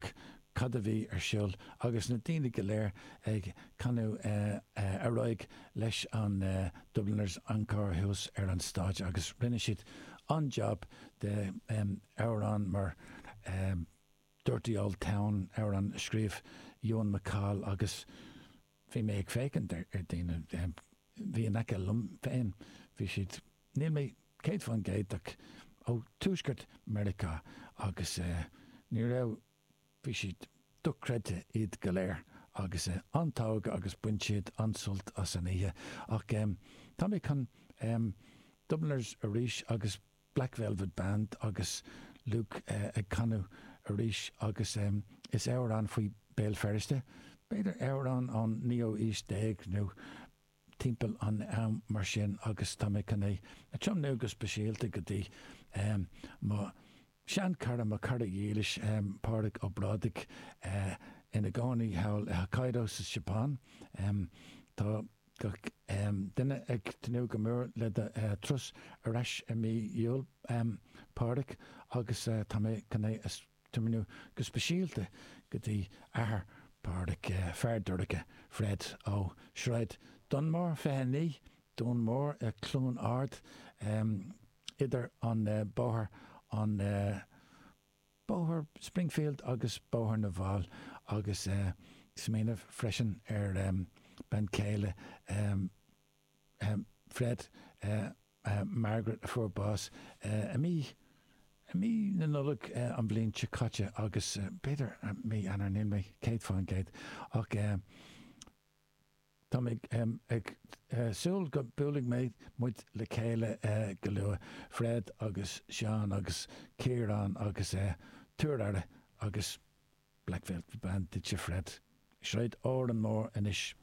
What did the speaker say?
Ach cad a bhí ar siul agus na daoine go léir ag canadh ar aghaidh leis an Dubliners Encore thuas ar an stáitse agus rinne siad an-jab de amhrán mar Dirty Old Town, amhrán a scríobh Ewan MacColl agus bhí mé ag féachaint ar daoine a bhí in aice liom féin, bhí siad, níl mé céad fán gcéad ach ó tuaisceart Meiriceá agus ní raibh, bhí siad dochreidte iad go léir agus an-togha agus bain siad an-sult as an oíche ach tá mé chun Dubliners arís agus Black Velvet Band agus Luke ag canadh arís agus is amhrán faoi Béal Feirste, b'fhéidir amhrán ón naoú aois déag nó timpeall an am mar sin agus tá mé chun é a tiomnú go speisialta go dtí mo sheanchara, mo chara dhílis Pádraig Ó Brádaigh ina gcónaí thall i Hokkaido sa Seapáin. Tá. gach duine ag tnúth go mór le do turas ar ais i mí Iúil, Pádraig, agus tá mé chun é a tiomnú go speisialta go dtí athair Pádraig, Fear Dorcha, Fred ó Shráid Dún Mór 29, Dún Mór, Cluain Ard, idir an Bóthar an. Bóthar Springfield agus Bóthar na bhFál agus eh smaoineamh freisin ar em bean chéile em, em Fred eh eh Margaret a fuair bás eh i mí, i mí na Nollag eh an bhliain seo caite agus b'fhéidir mí Eanáir níl mé céad fán gcéad ach eh, Tá mé ag súil go mbuailfidh mé muid le chéile go luath, Fred agus Seán agus Ciarán agus tabhair aire agus Black Velvet Band duitse Fred. i Sráid an Dún Mór anois.